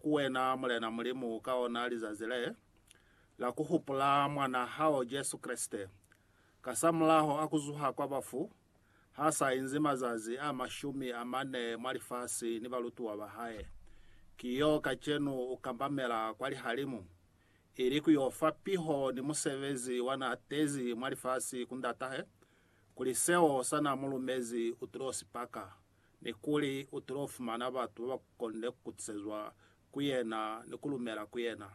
Ku wena, Mulena Mulimu, ka ona lizazi le, la ku hupula Mwan'a hao Jesu Kreste, kasamulaho a ku zuha kwa bafu, ha sa inzi mazazi a mashumi a mane mwa lifasi ni balutuwa ba hae, ki yo kacenu u kambamela kwa lihalimu, ili ku yo fa piho ni musebezi wa n'a tezi mwa lifasi ku Ndatahe, kuli seo sa n'a mu lumezi u tulo sipaka. ni kuli u tilo fumana batu ba ba konile ku kutisezwa ku yena ni ku lumela ku yena.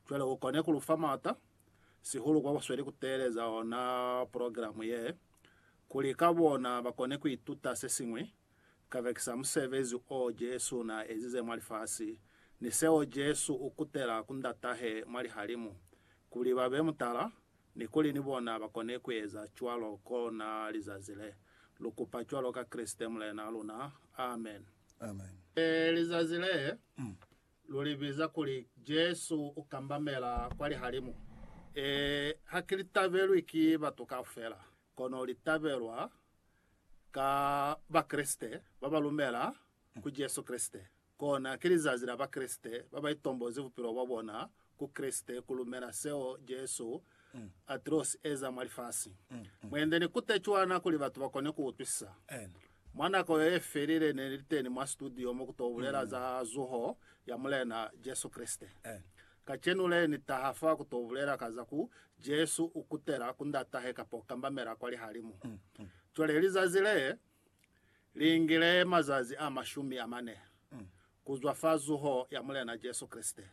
Cwale u kone ku lu fa maata, sihulu kwa ba sweli ku teeleza ona progilamu ye, kuli ka bona ba kone ku ituta se siñwi kabekisa musebezi o Jesu n'a ezize mwa lifasi ni seo Jesu u kutela ku Ndatahe mwa lihalimu, kuli ba be mutala ni kuli ni bona ba kone ku eza cwalo kona lizazi le. Lu kupa cwalo ka Kreste Mulena luna. Amen. Amen. Ee, lizazi le, lu li biza kuli Jesu u kambamela kwa lihalimu. Ee, ha ki li tabelwi ki batu kaufela, kono li tabelwa ka Bakreste ba ba lumela ku Jesu Kreste. Kona, ki lizazi la Bakreste ba ba itombozi bupilo bwa bona ku Kreste, ku lumela seo Jesu a tilo si eza mwa lifasi. Mwendi ni kute cwana kuli batu ba kone ku utwisisa. Mwa nako yo ye felile, ne ni li teni mwa situdio mo ku to bulela za zuho ya Mulena Jesu Kreste. Kacenu le, ni taha fa ku to bulela ka za ku Jesu u kutela ku Ndatahe kamba u kambamela kwa lihalimu. Cwale lizazi le, Liingile mazazi a mashumi amane kuzwa fa zuho ya Mulena Jesu Kreste.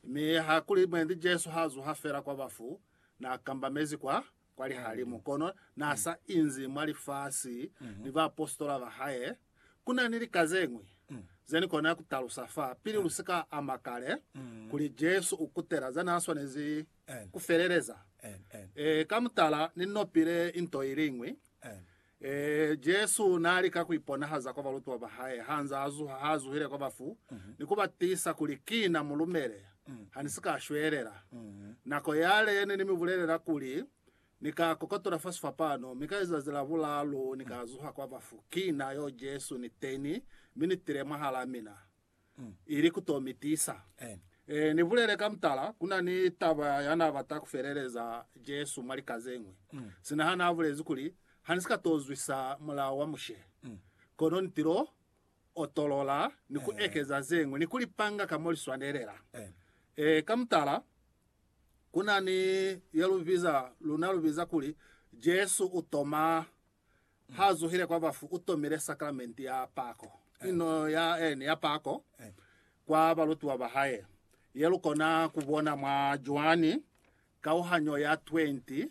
Mi hakuli mwendi Jesu ha zuha fela kwa bafu, na kambamezi kwa kwa lihalimu, kono na sa inzi mwa lifasi ni baapositola ba hae. Ku na ni lika ze ñwi ze ni kona ku talusa fa pili lu si ka ama kale, kuli Jesu u kutela za na swanezi ku feleleza. Ee, ka mutala, ni nopile nto iliñwi Ee, Jesu naalika kuiponahaza kwa balutiwa bahae hanza azuha haazuhile kwa bafu ni kubatisa kuli, Kina, mulumele, hanisika shwelela. Nako yale ne nimibulelela kuli, Ni ka kokotola fa sifapano, mi ka lizazi la bulaalu Ni ka zuha kwa bafu. Kina yo Jesu niteni, mi nitile mwahalaa mina. ili ku to mi tisa. Ni bulele ka mutala, ku na ni taba ya na bata ku feleleza Jesu mwa lika ze ñwi, sina ha na bulezi kuli, Ha ni si ka to zwisa Mulao wa Mushe, kono ni tilo otolola ni ku ekeza ze ñwi ni ku li panga ka mo li swanelela. Ka mutala, ku na ni ye lu biza, luna lu biza kuli, Jesu u toma Ha zuhile kwa bafu, u tomile sakramenti ya pako, ino ya ene ya pako, kwa balutiwa ba hae, ye lu kona ku bona mwa Joani kauhanyo ya 20,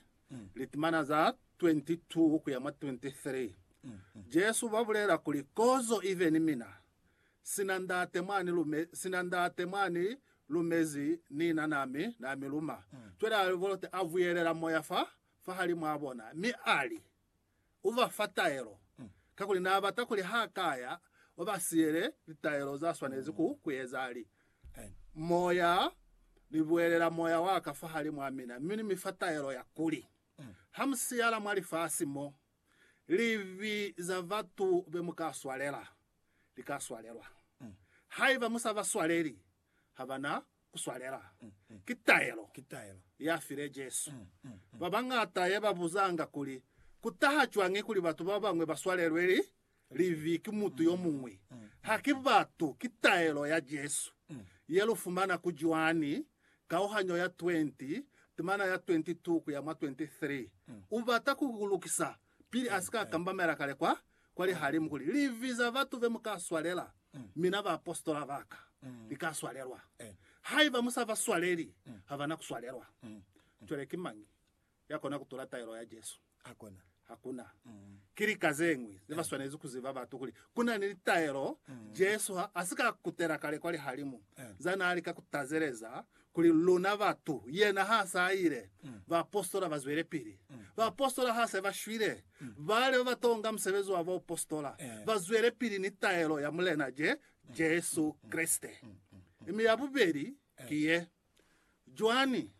litimana za 22 kuya mwa 23. Jesu ba bulela kuli, Kozo ibe ni mina, sina Ndate mwa ni lume, sina Ndate mwa ni lumezi, ni na na mi, na mi luma. Cwale a bolote, a buyelela moya fa fahalimuabona, mi ali, Uva fa taelo, kakuli naabata kuli ha kaya, ubasiyele litaelo zaswanezi ku kueza. Ali, Moya, Nibuelela Moya waka fahalimua mina, mi Nimifa taelo ya kuli, hamusiyala mwa lifasi mo, livi za batu bemuka swalela, lika swalelwa. Haiba musabaswaleli, ha ba na ku swalela. Ki taelo ya file Jesu. Ba bañata ye ba buzanga kuli, Ku taha cwañi kuli batu ba bañwi ba swalelwe libi ki mutu yo muñwi? Ha ki batu, ki taelo ya Jesu ye lu fumana ku Joani kauhanyo ya 20, timana ya 22 ku ya mwa 23. U bata ku lukisa Pili a si ka kambamela kale kwa, kwa lihalimu kuli, Livi za batu be mu ka swalela, mina baapositola ba ka, li ka swalelwa. Haiba mu sa ba swaleli, ha ba na ku swalelwa. Cwale ki mañi ya kona ku tula taelo ya Jesu? Hakuna. Ki lika ze ñwi ze ba swanezi ku ziba batu kuli ku na ni litaelo Jesu ha a si ka kutela kale kwa lihalimu za naa lika ku tazeleza Kuli luna batu, yena ha sa ile, baapositola ba zwelepili. Baapositola ha se ba shwile, bale ba ba tonga musebezi wa baupositola ba zwelepili ni taelo ya Mulena Je, Jesu Kreste. Mi ya bubeli ki ye, Joani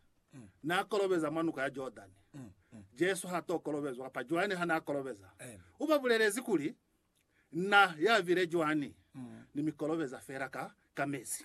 n'a kolobeza mwa Nuka ya Jordani. Jesu h'a t'o kolobezwa, kapa Joani ha n'a kolobeza. U ba bulelezi kuli, Na, ya bile Joani, ni mi kolobeza fela ka, ka mezi.